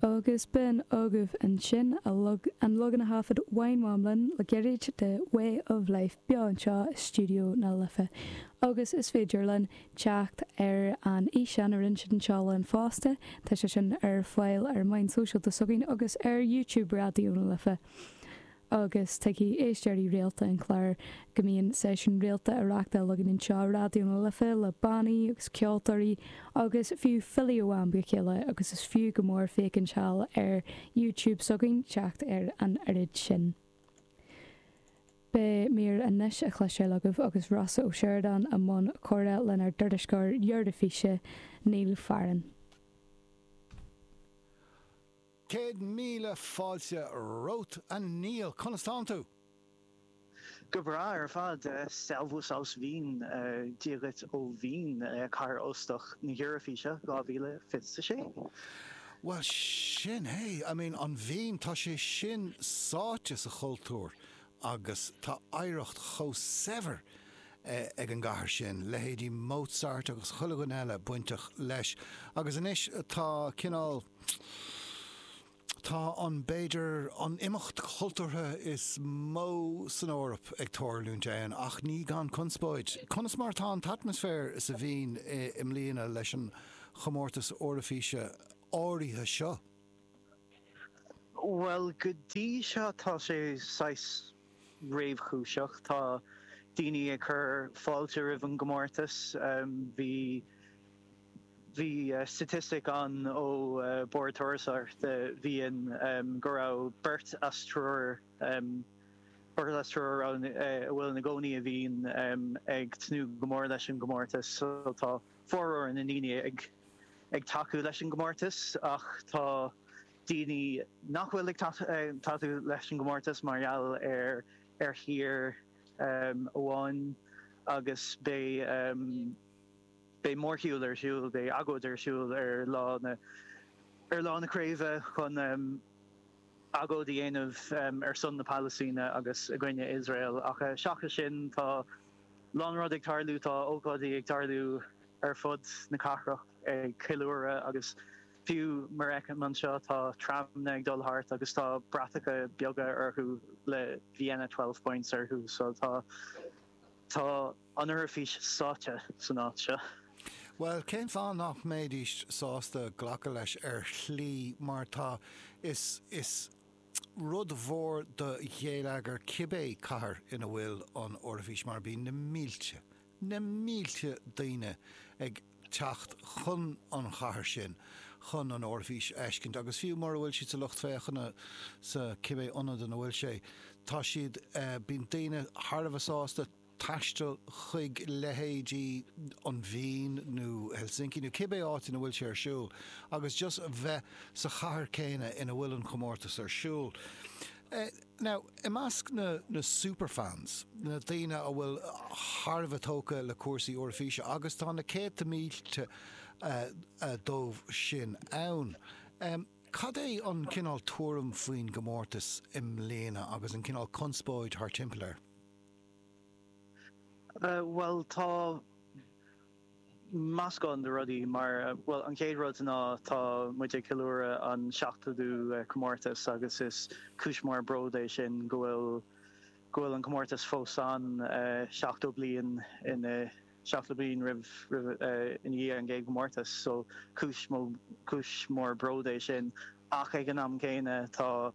Agus b'in agaibh ansin an leagan a thaifead Wine Mom linn le gairid de 'Way of Life' beo anseo i stiúideo na Life. Agus is féidir linn teacht ar an fhíseán a roinn siad anseo linn fosta, tá sé sin ar fáil ar na meáin shóisialta s'againn agus ar YouTube Raidió na Life. agus tuigfidh éisteoirí rialta an chláir go mbíonn seisiúin rialta á reachtáil againn anseo i Raidió na Life le bannaí agus ceoltóirí agus fiú filí ó am go chéile agus is fiú go mór féachaint siar ar YouTube s'againn teacht ar an oiread sin Beidh mír anois a chloisteáil agaibh agus Rossa Ó Sioradáin i mbun comhrá lenár dtuairisceoir Eoraifíse, Neil Farren. Céad míle fáilte romhat a Neil! Conas tánn tú? Go breá ar fad. Servus aus Wien. Dia dhuit ó Vín, cathair óstach na hEoraifíse 2026. Bhuel sin é. I mean, an Vín, tá sé sin sáite sa chultúr Agus tá oidhreacht chomh saibhir ag an gcathair sin, leithéidí Mozart agus chuile dhuine eile bainteach leis. Agus anois tá cineál, tá an, b'fhéidir, an imeacht cultúrtha is mó san Eoraip ag tárlúint ann, ach ní gan conspóid. Conas mar atá an t-atmaisféar sa Vín i mbliana leis an chomórtas Eoraifíse áirithe seo? Bhuel, go dtí seo tá sé saghas réchúiseach. Tá daoine ag cur fáilte roimh an gcomórtas. Bhí, bhí staitistic ann ó Bord Turasóireachta Vín go raibh beirt as triúr, beirt as triúr a raibh, a bhfuil ina gcónaí i Vín ag tnúth go mór leis an gcomórtas so tá, formhór na ndaoine ag tacú leis an gcomórtas ach tá daoine nach bhfuil ag tacú leis an gcomórtas mar gheall ar thír amháin agus beidh mórshiúl ar siúl, beidh agóid ar siúl ar lá na craoibhe chun. agóid a dhéanamh ar son na Pailistíne agus i gcoinne Iosrael ach seachas sin tá a lán rud ag tarlú, tá ócáidí ag tarlú ar fud na cathrach ag ceiliúradh agus fiú mar a fheicim anseo tá tramanna ag dul thart agus tá bratacha beaga orthu le Vienna Twelve Points orthu so tá An Eoraifís sáite san áit seo. Bhuel, cén fáth nach mbeidís sásta glacadh leis ar shlí mar tá, is, is rud mhór do ghéilleagar cibé cathair ina bhfuil an Eoraifís mar bíonn na mílte, na mílte daoine ag teacht chun an chathair sin chun an Eoraifís a fheiscint agus fiú mura bhfuil siad sa lucht féachana sa cibé ionad ina bhfuil sé tá siad, bíonn daoine thar a bheith sásta. taisteal chuig leithéidí an Vín nó Helsinki nó cibé áit ina bhfuil sé ar siúl agus just bheith sa chathair céanna ina bhfuil an comórtas ar siúl. Now, i measc na na superfans, na daoine a bhfuil thar a bheith tógtha le cúrsaí Eoraifíse, agus tá na céadta mílte díobh sin ann, cad é an cineál tuairim faoin gcomórtas i mbliana agus an cineál conspóid thar timpeall air? Bhuel tá meascán de rudaí mar, bhuel an chéad rud ná tá muid ag ceiliúradh an seachtódú comórtas agus is cúis mór bród é sin go bhfuil, go bhfuil an comórtas fós ann seachtó bliain ina, seachtó bliain roimh, roimh, ina dhiaidh an gcéad gcomórtas so cúis, cúis mór bród é sin ach ag an am céanna tá,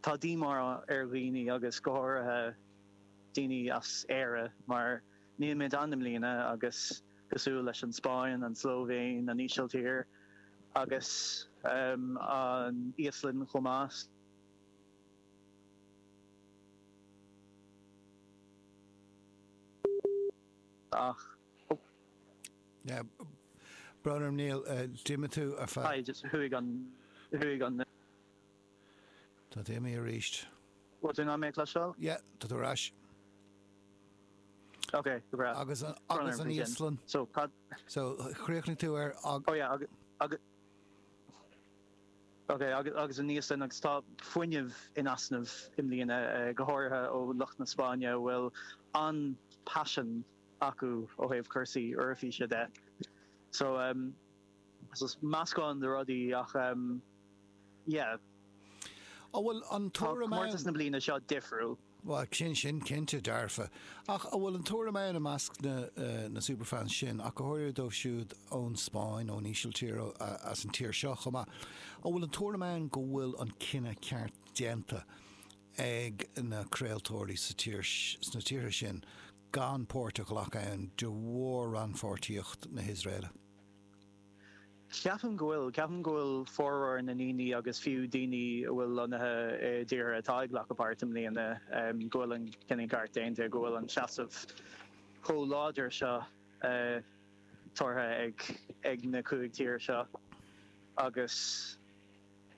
Tá díomá ar dhaoine agus go háirithe daoine as Éire mar nílimid ann i mbliana agus cosúil leis an Spáinn, an tSlóivéin, an Ísiltír agus an Íoslainn chomh maith, ach Branar Níl, d'imigh tú ar feadh. Chuaigh an. Tá tú imithe aríst. Bhfuil tú in ann mé a chloisteáil? Yeah, tá tú ar ais. Ok, go breá. Agus an, agus an Íoslainn? So, cad? So, chríochnaigh tú ar ag. Oh yeah, agus, agus. Ok, agus, agus an Íoslainn agus tá fuinneamh in easnamh i mbliana, go háirithe ó lucht na Spáinne a bhfuil an-passion acu ó thaobh cúrsaí Eoraifíse de. So, so meascán de rudaí ach em yeah. An bhfuil an tuairim ann. Tá comórtas na bliana seo difriúil. Bhuel, sin sin cinnte dearfa. Ach an bhfuil an tuairim ann i measc na eh na superfans sin, ach go háirithe dóibh siúd ón Spáinn, ón Ísiltír, ó eh as an tír seo chomh maith, an bhfuil an tuairim ann go bhfuil an cinneadh ceart déanta ag na craoltóirí sa tír sna tíortha sin gan páirt a ghlacadh ann de bharr rannpháirtíocht na hIosraeile? Ceapaim go bhfuil. Ceapaim go bhfuil formhór na ndaoine agus fiú daoine atá lonnaithe i dtíortha atá ag glacadh páirt i mbliana, go bhfuil an cinneadh ceart déanta, go bhfuil an seasamh chomh láidir seo tabhartha ag na cúig tír seo agus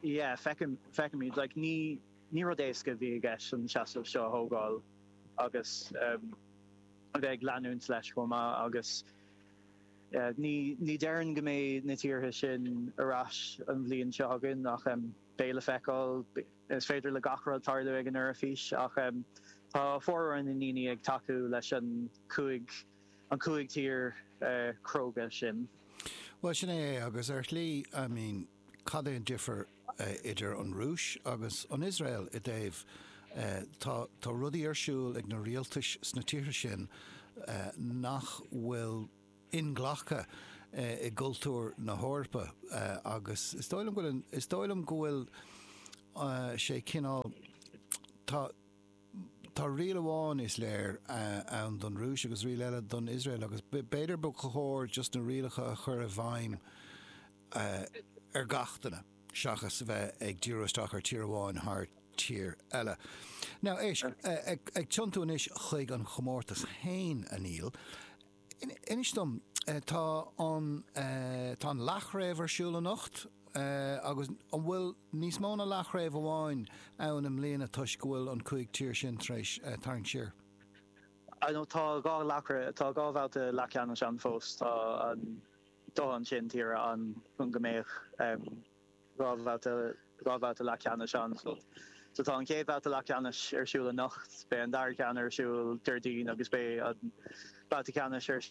yeah, feicim, feicimid like ní, ní rud éasca a bhí i gceist an seasamh seo a thógáil agus a bheith ag leanúint leis chomh maith agus. Ní déarfainn go mbeidh na tíortha sin ar ais an bhliain seo chugainn ach beidh le feiceáil. Is féidir le gach rud tarlú ag an Eoraifís ach tá formhór na ndaoine ag tacú leis an cúig an cúig tír chróga sin. Bhuel, sin é é agus ar shlí, I mean. Cad é an difear idir an Rúis agus an Iosrael i dtaobh, tá, tá rudaí ar siúl ag na rialtais sna tíortha sin nach bhfuil inghlactha i gcultúr na hEorpa agus is dóigh liom go bhfuil, is dóigh liom go bhfuil sé cineál, tá, tá riail amháin is léir ann don Rúis agus riail eile don Iosrael agus b'fhéidir ba chóir just na rialacha a chur i bhfeidhm, ar gach duine seachas a bheith ag díriú isteach ar tír amháin thar tír eile. Now, éist, ag tiontú anois chuig an chomórtas fhéin, a Neil, inis dom, tá an, tá an leath-chraobh ar siúl anocht, agus an bhfuil níos mó ná leath-chraobh amháin ann i mbliana toisc go bhfuil an cúig tír sin tar éis tarraingt siar? I know, tá dhá leath-chraobh, tá dhá bhabhta leath-cheannais ann fós, tá an, dóthain sin tíre ann chun go mbeadh dhá bhabhta, dhá bhabhta leath ceannais ann. So so tá an chéad bhabhta leath ceannais ar siúl anocht, beidh an dara ceann ar siúl Déardaoin agus beidh an babhta ceannais ar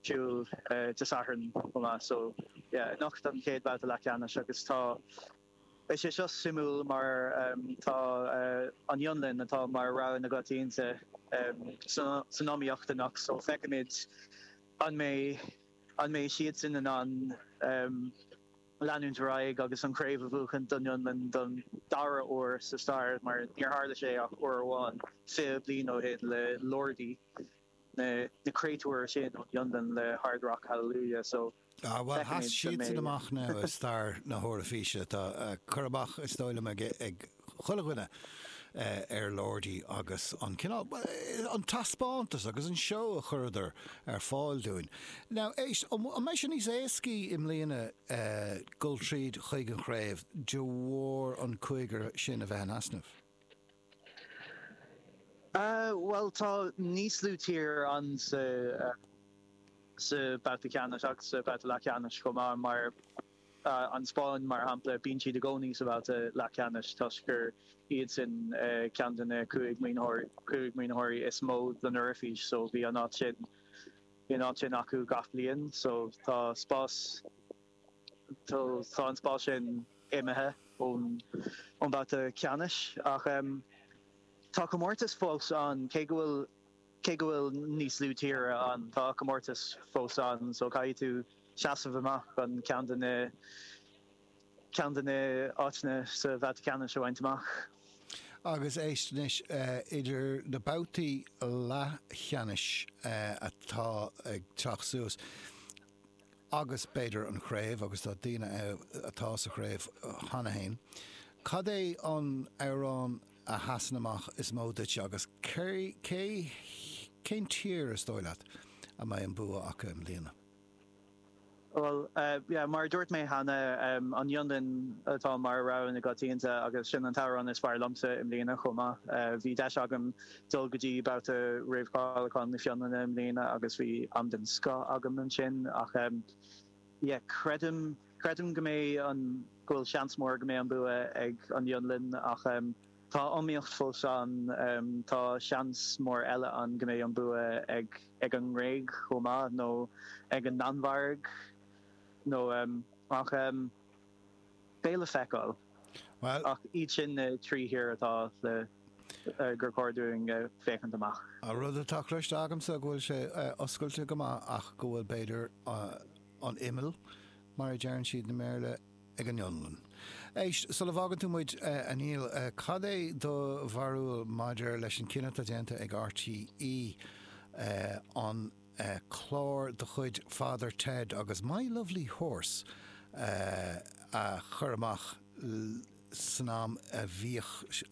siúl Dé Sathairn chomh maith. So yeah anocht an chéad bhabhta leath ceannais agus tá, beidh sé seo suimiúil mar tá an Fhionlainn atá mar rogha na coitiantachta san iomaíocht anocht so feicfimid an mbeidh, An mbeidh siadsan in ann leanúint ar aghaidh agus an chraobh a bhuachaint don Fhionlainn don dara huair sa stair mar níor tharla sé ach uair amháin fiche bliain ó shin le Lordi, na créatúir sin ón Fhionlainn le Hard Rock Hallelujah so feicfimid an mbeidh. Ah bhuel, sheas siadsan amach now i stair na hEoraifíse. Tá cur amach is dóigh liom ag. chuile dhuine ar Lordi agus an cineál, an taispeántas agus an seó a chuireadar ar fáil dúinn. Now, éist, an mbeidh sé níos éascaí i mbliana dul tríd chuig an chraobh de bharr an cúigear sin a bheith in easnamh? Bhuel, tá níos lú tír ann sa babhta ceannais agus sa babhta leathcheannais chomh maith mar. An Spáinn, mar shampla, bíonn siad i gcónaí sa bhabhta leathcheannais toisc gur iadsan ceann de na cúig maoinitheoirí is mó don Eoraifís so bhí an áit sin bhí an áit sin acu gach bliain so tá spás so tá an spás sin imithe ón ón mbabhta ceannais ach tá comórtas fós ann cé go bhfuil Cé go bhfuil níos lú tíortha ann, tá comórtas fós ann so caithfidh tú seasamh amach chun ceann de na ceann de na háiteanna sa bhabhta ceannais a bhaint amach. Agus éist anois, idir na babhtaí leathcheannais atá ag teacht suas agus b'fhéidir an chraobh, agus tá daoine ann atá sa chraobh cheana fhéin, cad é an amhrán, a sheasann amach is mó duit agus cé, cé, cén tír is dóigh leat a mbeidh an bua acu i mbliana? Bhuel, yeah, mar a dúirt mé cheana, an Fhionlainn atá mar rogha na gcoitianta agus sin an t-amhrán is fearr liomsa i mbliana chomh maith. Bhí deis agam dul go dtí babhta réamhcháiliúcháin na Fionlainne i mbliana agus bhí am den scoth agam ansin ach, Yeah, creidim, creidim go mbeidh an, go bhfuil seans mór go mbeidh an bua ag an Fhionlainn ach em tá iomaíocht fós ann, em tá seans mór eile ann go mbeidh an bua ag, ag an nGréig chomh maith nó ag an Danmhairg nó em, ach em. beidh le feiceáil. Bhuel. Ach is iad sin na trí thír atá le, gur chóir dúinn féachaint amach. An rud atá cloiste agamsa go bhfuil sé oscailte go maith ach go bhfuil b'fhéidir an imeall mar a deireann siad i mBéarla ag an Fhionlainn. Éist, sula bhfágann tú muid a Neil, cad é do bharúil maidir leis an cinneadh atá déanta ag RTÉ an, clár de chuid Father Ted agus My Lovely Horse a chur amach san am a bhíodh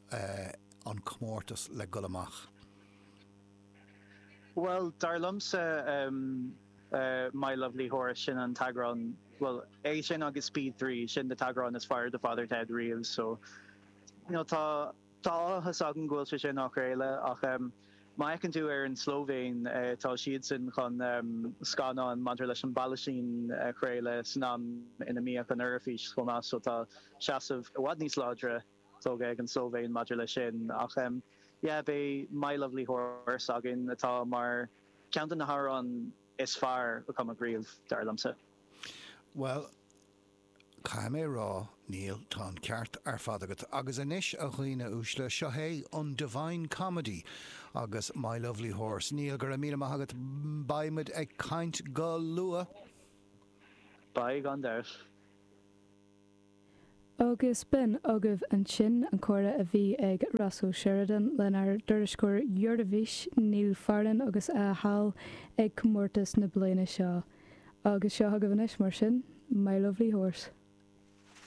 an comórtas le dhul amach. Bhuel, dar liomsa My Lovely Horse, sin an t-eagrán, bhuel, é sin agus Speed Three, sin na t-eagráin is fearr de Father Ted riamh so, you know, tá, Tá áthas agam go bhfuil sé sin á chraoladh ach má fheiceann tú ar an Slovéin tá siadsan chun scannán maidir leis an bPalaistín a chraoladh san am ina mbíodh an Eoraifís chomh maith so tá seasamh i bhfad níos láidre tógtha ag an Slovéin maidir leis sin ach yeah beidh My Lovely Horse againn atá mar ceann de na hamhráin is fearr a cumadh riamh dar liomsa. Bhuel, Caithfidh mé a rá, Neil, tá an ceart ar fad agat. Agus anois, a dhaoine uaisle, seo é an Divine Comedy agus My Lovely Horse. Neil, go raibh míle maith agat. Beidh muid ag caint go luath. Gan dabht. Agus b'in agaibh ansin an comhrá a bhí ag Ross O'Sheridan lenár dtuairisceoir Eoraifíse Neil Farren agus a shúil ar comórtas na bliana seo. Agus seo agaibh anois, mar sin, My Lovely Horse.